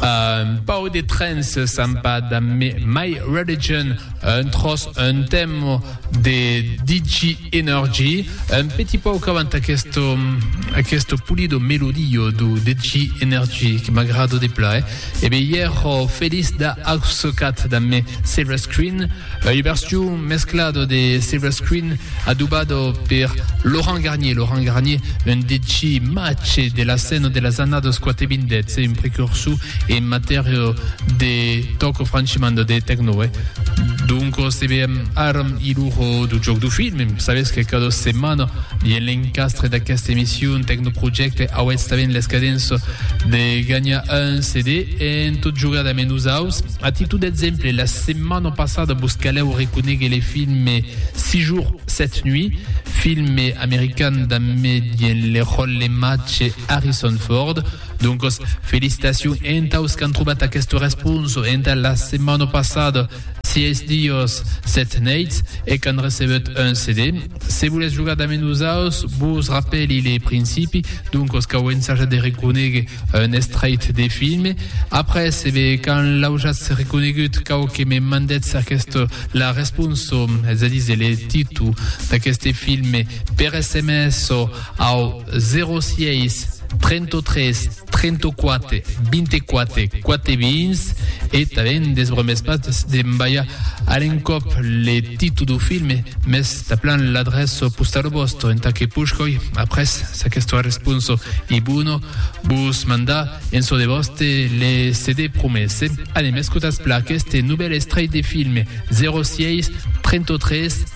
Un pauc de trens s'an pas damb My Religion, un tròç, un temo de Digi Energy, un petit pauc avant aquesto, aquesto pulido melodio do Digi Energy que m'agrado de pla, eh? E ben, ièro feliç d'a aucecat damb Silver Screen, Uberstió mesclado de Silver Screen adubado per Laurent Garnier. Laurent Garnier, un deci mace de la scèna de las annadas quate vindètz e un precursor en matèria de tòco franchimanda de tecno. E doncas se veem ara i l'ora dau jòc dau film. Sabètz que cada setmana dins l'encastre d'aquesta emission Tecno Projecte auètz tanben l'escadença de ganhar un CD en tot jogar damb nosaus. A títol d'exemple, la setmana passada vos calèu reconéguer le filme Six jours, sept nuits, filme american damb me dien le ròl le matge Harrison Ford. Doncas, felicitacions entaus qu'an trobat aquesta responsa entà la setmana passada Sièis dias, set neits e qu'an recebut un CD. Se volètz jogar dame nosaus, vos rapèli le principi, doncos cau ensajat de reconéguer un estraight de filme. Après, e ben, quand l'aujatz reconégut, cau que me mandètz aqueste la responso, es a díser le títol d'aqueste filme, per sms au 06 33 34 24 4 vins e talent desbromès pas de m'balhar a l'encòp le títol do film mes taplan l'adreço postalo bòsto entà que puch coi après s'aquesto responso i buono vos mandar en so de vòste le CD promese anem escotas pla aqueste novèl estrèit de film 06 33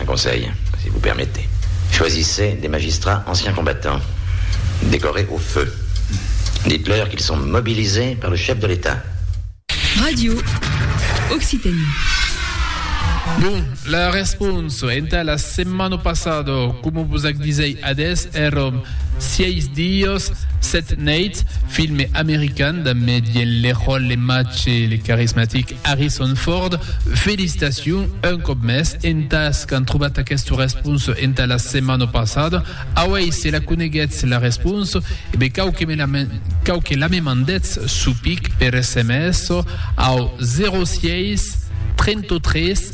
Un conselh, si vous permettez. Choisissez des magistrats anciens combattants, décorés au feu. Dites-leur qu'ils sont mobilisés par le chef de l'Etat. Radio Occitanie. Bon, la respons entà la setmana passada, coma vos ac disèi adés, èram Sièis dias, sèt neits, filme american damb Mediel Leroy, le matge, le carismatic Harrison Ford, Felicitacion un còp mès entàs qu'an trobat aquesta responsa entà la setmana passada. Auèi se la coneguètz la responsa, e be cau que me la cau que la me mandètz sou pic per sms au 06 33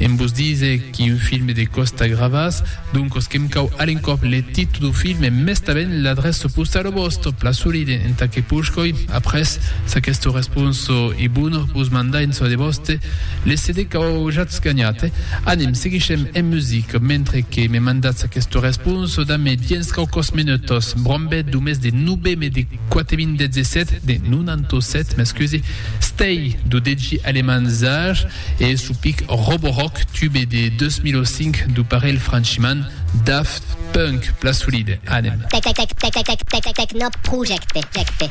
Em vos dise qu'i un filme de Costa Gravas, doncos que'm cau a l'encòp le titu do filme e mèstament l'adrèço postau do vòsto plasolide entà que puch coi, après s'aquesto responso e bono, vos mandar en çò de vòste, le CD qu'au jatz ganhat. Anem, seguishem en music, mentre que me mandatz aquesto responso, dambe diens quauquòs menutòs, brombèt do mes de noveme de 4017, de 97, m'excusi, Stay, do degi aleman Zaj, E su pic robo-rock tube de 2005 du parelh franchiman Daft Punk, plan solide, anem. Tecnoprojecte.